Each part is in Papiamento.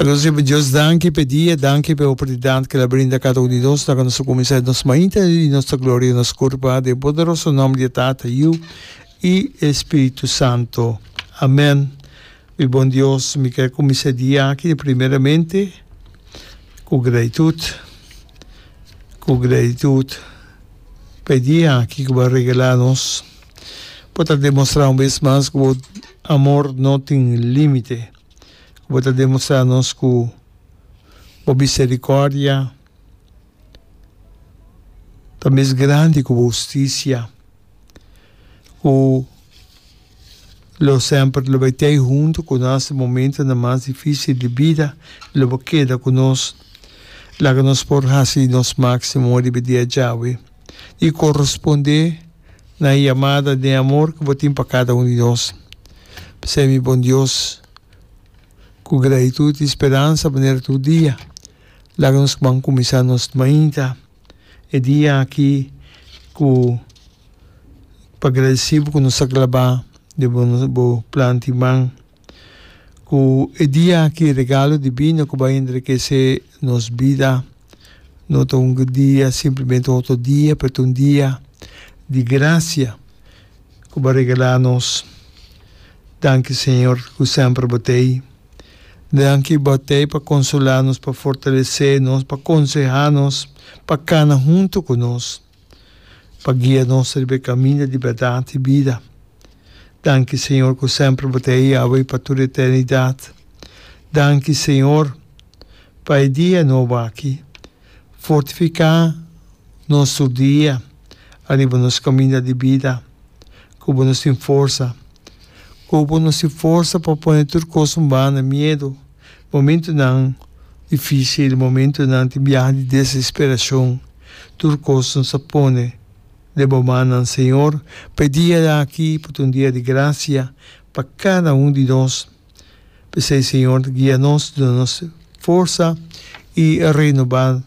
Nos riba Dios danki p'e dia, danki p'e oportunidat k'el a brinda kada un di nos na kando nos a kuminsá di nos mainta i nos ta gloria nos kurpa den poderoso nòmber di Tata, Yu i e Spiritu Santu. Amèn. Mi bon Dios, mi ke kuminsá e dia aki de primeramente ku gratitut, ku gratitut p'e dia aki ku bo a regalá nos pa ta demostrá un bes mas ku bo amor no tin límite. ku bo ta demostrá nos ku bo miserikòrdia ta mes grandi ku bo hustisia, ku lo semper lo bai t'ei huntu ku nos den momentunan mas difísil di bida, lo bai keda ku nos. Laga nos por hasi nos máksimo riba e dia djawe. i korespondé na e yamada den amor ku bo tin pa kada un di nos. P'esei mi bon Dios, ku gratitut i speransa manera tur dia, laga nos ban kuminsá nos mainta e dia aki ku pa gradesí bo ku nos ta glabá den bo plan di man. Ku e dia aki e regalo divino ku bai enrikesé nos bida no ta un dia simplemente otro dia, pero ta un dia di grasia ku bo a regalá nos. Danki Señor ku semper bo ta ei. Danki bo ta ei pa konsolá nos, pa fortalesé nos, pa konsehá nos, pa kana huntu ku nos. pa guia nos riba e kaminda di bèrdat i bida. Danki, Señor, ku semper Bo ta ei awe i pa tur eternidat. Danki, Señor, pa e dia nobo aki. Fortifiká nos tur dia ariba nos kaminda di bida. Ku Bo nos tin forsa. Ku Bo nos tin forsa pa pone tur kos un banda, miedu. Momentunan difísil, momentunan di biaha di desesperacion, tur cos nos a pone den bo mannan, Señor, pa e dia aki por ta un dia di gracia pa cada un di nos. P'esey, Señor, guia nos, duna nos forsa y renoba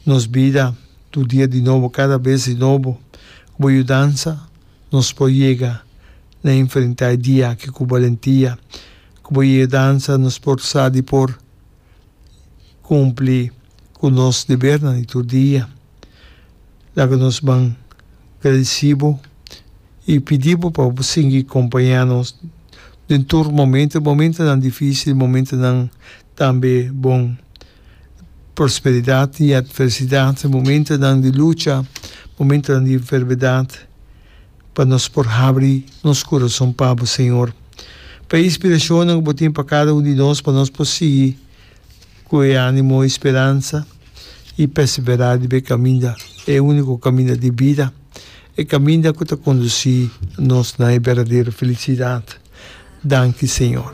nos bida tur dia di nobo, cada bes di nobo. Cu bo yudansa nos por yega na enfrenta e dia aki cu balentia, Ku bo i e dansa nos por sa di por kumpli ku nos debernan di tur dia. Laga nos ban gradisí bo i pidi bo pa bo sigui kompañá nos den tur momentu, momentunan difísil, momentunan tambe bon, prosperidat i atversidat, momentunan di lucha, momentunan di enfermedat. Pa nos por habri nos kurason pa Bo, Señor. Pa e inspirashonnan ku Bo tin pa kada un di nos, pa nos por sigui ku e ánimo, e speransa i perseverá riba e kaminda, e úniko kaminda di bida, e kaminda ku ta kondusí nos na e berdadero felisidat. Danki, Señor.